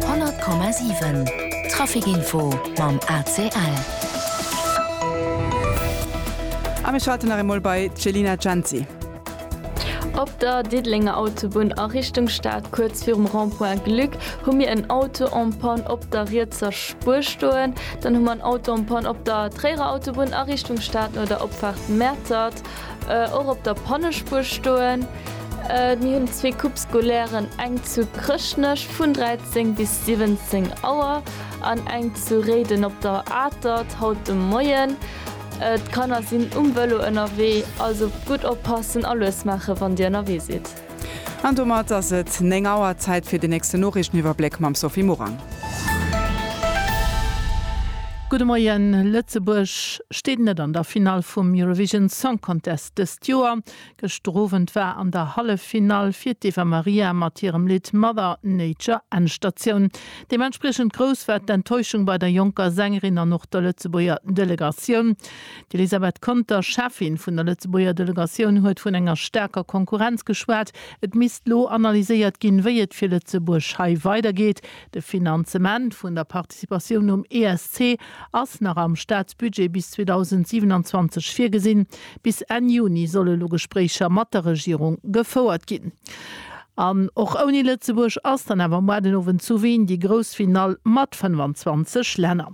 100,7 Trafic Info mam ACL. A mir schalten nach emol bei d'Selina Genzi. Op der Diddelenger Autobunn a Richtung Stad kuerz virum Rond-point Glück hu mir en Auto en panne op der rietser Spuer stoen. Dann hu mer en Auto en panne op der Tréierer Autobunn a Richtung Stad no der Opfaart Mäertert. Och op der Pannespuer stoen. Mir hunn zwee Coupes scolaires, eng zu Chrëschtnech vun 13 bis 17 Auer an eng zu Réiden op der Atert haut de Moien. D'Kanner sinn um Vëlo ënnerwee, also gutt oppassen a lues maache wann Dir ënnerwee sidd. An domat ass et 9 Auer. Zäit fir den nächsten Noriichteniwwerbléck mam Sophie Morang. Gudde Moien, Lëtzebuerg steet net an der Finall vum Eurovision Song Contest dëst Joer. Gëschter Owend war an der Halleffinall fir d'Eva Maria mat hirem Lidd Mother Nature Endstatioun. Deementspriechend grouss war d'Enttäuschung bei der jonker Sängerin an och der Lëtzebuerger Delegatioun. D'Elisabeth Conter, Cheffin vun der Lëtzebuerger Delegatioun, huet vun enger staarker Konkurrenz geschwat. Et misst lo analyséiert ginn, wéi et fir Lëtzebuerg hei weidergeet. De Finanzement vun der Participatioun um ESC ass nach am Staatsbudget bis 2027 virgesinn. Bis Enn Juni solle lo Gespréicher mat der Regierung gefouert ginn. An och ouni Lëtzebuerg ass dann awer muar den Owend zu Wien déi grouss Finall mat 25 Länner.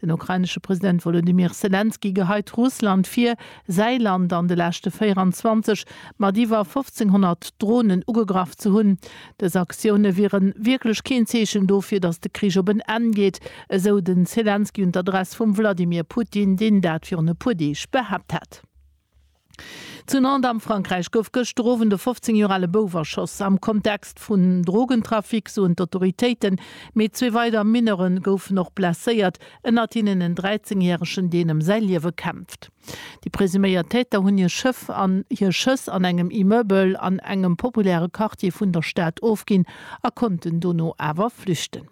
Den ukrainesche President Wolodymyr Selenskyj geheit Russland vir, säi Land an de leschte 24 mat iwwer 1.500 Dronen ugegraff ze hunn. Dës Aktioune wiere wierklech keen Zeechen dofir, datt de Krich op en Enn geet, esou de Selenskyj un d'Adress vum Wladimir Putin, deen dat virun e puer Deeg behaapt hat. Zu Nantes am Frankräich gouf gëschter Owend e 15 Joer ale Bouf erschoss. Am Kontext vun Drogentrafic, soen d'Autoritéiten. Mee zwee weider Mineure goufen och blesséiert, ënnert hinnen en 13 järegen, deen ëm säi Liewe kämpft. Déi presuméiert Täter hunn hir Schëff an hir Schëss an engem Immeuble an engem populäre Quartier vun der Stad ofginn a konnten dono awer flüchten.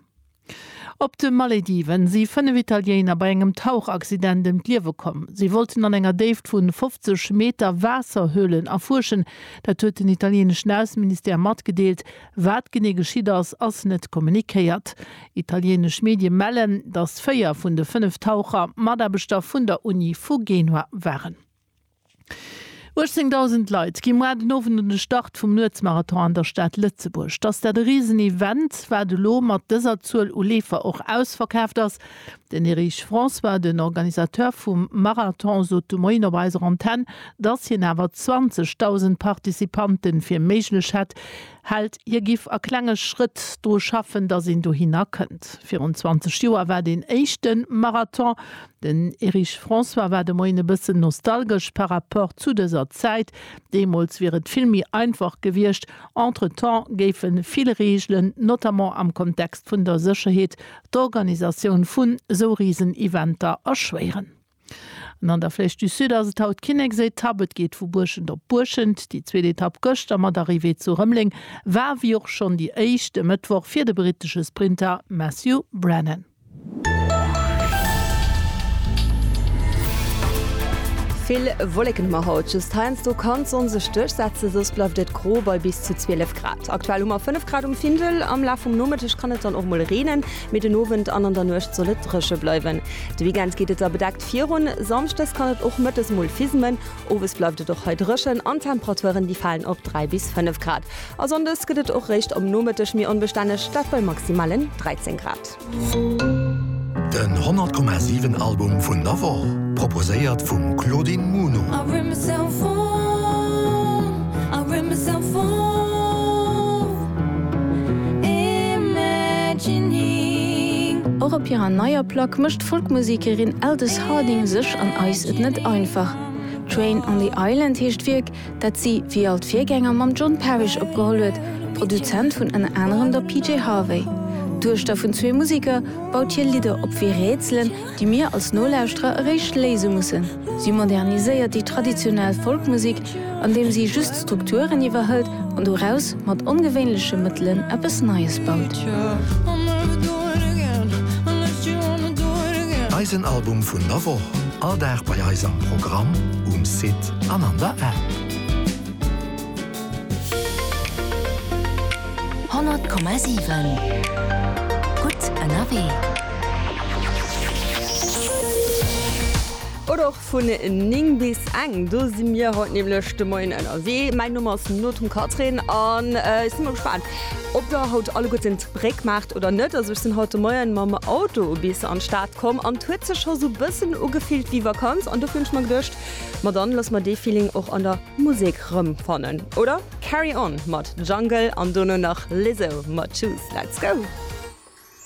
Op de Malediven si fënnef Italiener bei engem Tauchaccident ëm d'Liewe komm. Si wollten an enger Déift vun 50 Meter Waasserhöhlen erfuerschen. Dat huet den italieneschen Ausseministère matgedeelt. Wat genee geschitt ass, ass net kommunikéiert. Italienesch Medie mellen, datt véier vun de fënnef Taucher Mataarbechter vun der Uni vu Genua waren. 18.000 Leit gi muar den Owend un de Start vum Nuetsmarathon an der Stad Lëtzebuerg. Dass dat e riesen Event wat elo mat dëser Zuel u Leefer och ausverkaaft ass. Den Erich François, den Organisateur vum Marathon sot de Moien op eiser Antenn, dass hien awer 20.000 Participante fir méiglech hätt. Hält, hie giff a klenge Schrëtt dru schaffen, dass een dohinner kënnt. Virun 20 Joer war deen éischte Marathon Den Erich François war de Moien e bëssen nostalgesch par rapport zu dëser Zäit. Deemools wier et vill méi einfach gewiescht. Entretemps géife vill Reegelen, notamment am Kontext vun der Sécherheet, d'Organisatioun vun esou Risen-Eventer erschwéieren. An an der Flèche du Sud ass et haut d'Kinneksetapp. Et geet vu Buerschent op Buerschent. Déi zweet Etapp gëschter mat Arrivée zu Rëmeleng war, wéi och schonn déi éischt, e Mëttwoch fir de brittesche Sprinter Matthew Brennan. Vill Wolleken hu mer haut, just heiansdo kann d'Sonn sech duerchsetzen, soss bleift et gro bei bis zu 12 Grad. Aktuell hu mer 5 Grad um Findel. Am Laf vum Nomëtteg kann et dann och mol reenen, mee den Owend an an der Nuecht soll et dréche bleiwen. De Weekend geet et da bedeckt virun, samschdes kann et och mëttes mol fismen. Owes bleift et och hei dréchen an d'Temperaturen, déi falen op 3 bis 5 Grad. A Sonndes gëtt et och réischt am Nomëtteg méi onbestänneg, dat bei maximalen 13 Grad. Den 100,7 Album vun der Woch proposéiert vum Claudine Muno. Och op hirer neier Plack mécht d'Folkmusekerin Aldous Harding sech an eis et net einfach. Train on the Island heescht d'Wierk, dat si wéi all d'Virgänger mam John Parish opgeholl huet, Produzent vun ënner anerem der PJ Harvey. D'Duechter vun zwee Museker baut hir Lidder op wéi Rätselen, déi mir als Nolauschterer eréischt léise mussen. Si moderniséiert déi traditionell Folkmusek, andeem si just d'Strukturen iwwerhëlt an doraus mat ongewéinleche Mëttelen eppes Neies baut. Eisen Album vun der Woch, all Dag bei eis am Programm, um Site. an an der App. 100,7 Gutt ënnerwee. Oder och vun 9 bis eng, do si mir haut nämlech de Moien ënnerwee. Mäin Numm ass Nothum Catherine an ech si mol gespaant, ob der haut alleguerten d'Bréck maacht oder net. Also ech sinn haut de Moien mam Auto bis an d'Stad komm an et huet sech scho sou bëssen ugefillt wéi Vakanz an dofir hunn ech mer geduecht, Ma dann lass mer dee Feeling och an der Musek rëm fannen, oder? Carry On mat Jungle an dono nach Lizzo mat Choose. Let's go!